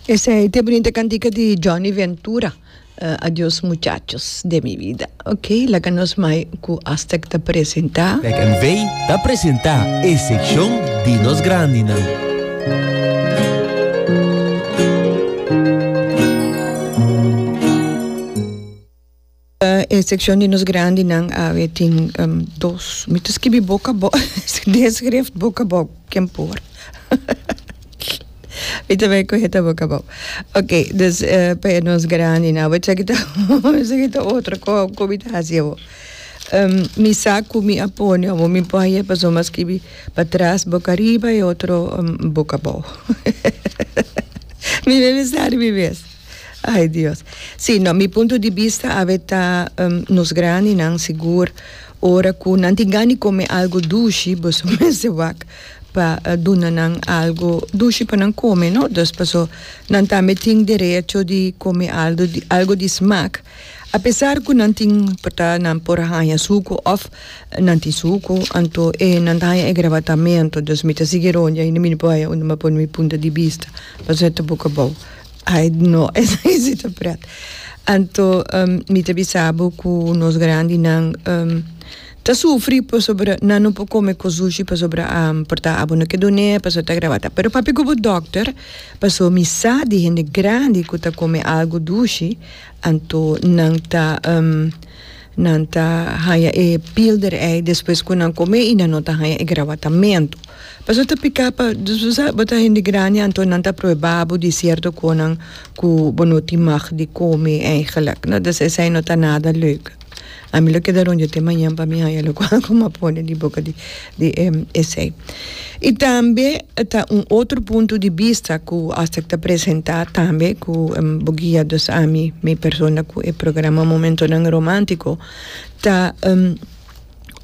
Esei te bonita cantica di Johnny Ventura. Uh, adios muchachos de mi vida. Ok, laga nos mai cu Aztec ta presenta. Tech and Vey ta presenta e seccion di nos grandinan. E sekshon di nos grandinan awe tin dos. Mi ta skibi boka bo des skrift boka bo ken por mi ta bai kuhe ta boka bo ok dus pa e nos grandinan awe esaki ta esaki ta otro ko ko mi ta hasi awo mi sa ku mi a pone awo mi por a yeh pasobra mi a skibi patras boka riba e otro boka bo mi me bisa riba mi mes. Ai Dios. Sí, no, mi punto di bista awe ta um, nos grandinan sigur ora ku nan tin gana di kome algo dushi, boso mester wak pa uh, duna nan algo dushi pa nan kome, no? Dus paso nan tambe tin derecho di kome algo di, algo di smak. A pesar ku nan tin por ta nan por haña suku of nan tin suku, anto e nan ta haña e grabatamento. Dus mi ta sigui ronda, mi no por haña unda mi a pone mi punto di bista, paso e ta buka bou. Ai no esaki si ta pret. Anto um, mi ta bisabo ku nos grandinan um, ta sufri pasobra nan no por kome ku sushi pasobra um, por ta abo no ke done paso ta gravata. Pero papi ku bo dokter paso mi sa di hende grandi ku ta kome algu dushi anto nan ta um, Nan ta haña e pilder ei despues ku nan kom'é i nan no ta haña e grawatamentu. Paso ta piká pa dus bo sa bo ta hende grandi anto nan ta pruebá bo di sierto konan ku bo no tin mag di kome eigenlik. No ta esei no ta nada leuk. Ami lo keda rònt yo te mañan pa mi haña loke ku mi a pone di boka di. di e esei. I tambe ta un otro punto di bista ku hasta ta presentá tambe ku bo guia dos ami mi persona ku e programa Momentonan Romántiko ta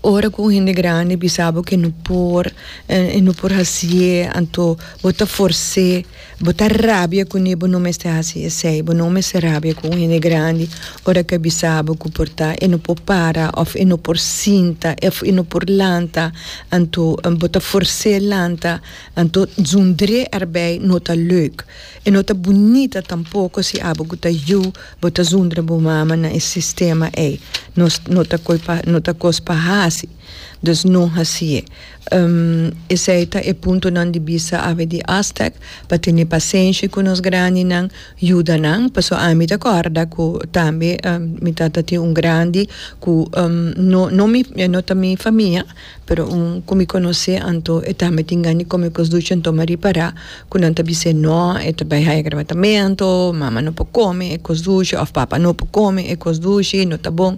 ora ku un hende grandi bisa bo ke no por e no por hasié anto bo ta fors'é. Bo ta rabia kuné bo no mester hasi esei. Bo no mester rabia ku un hende grandi ora e ta bisa bo ku por ta e no por para òf e no por sinta òf e no por lanta anto bo ta fors'é lanta anto zund'é arbei no ta leuk i no ta bunita tampoko si abo ku ta yu bo ta zundra bo mama na e sistema ei no ta kos pa hasi. Dus no hasié. Esei ta e puntonan di bista awe di Aztec, pa tene pasenshi ku nos grandinan, yuda nan, paso ami ta kòrda ku tambe mi tata tin un grandi ku no no mi no ta mi famia pero un ku mi konosé anto e tambe tin gani kòm e kos duchi anto mi a ripará ku nan ta bis'é nò e ta bai haya grabatamento mama no por kome e kos dushi òf papa no por kome e kos dushi no ta bon.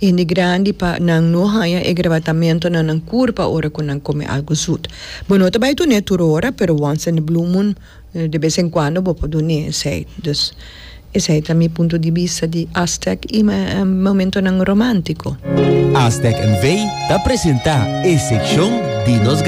Hende grandi pa nan no haña e grabatamentu na nan kurpa ora ku nan kome algu zut. Bo no ta bai dun'é tur ora, pero wans in a blue moon de bes en kuando bo por dun'é esei. Dus, esei ta mi punto di bista di Aztec i momentunan romántiko. Aztec NV. ta presentá e sekshon di nos.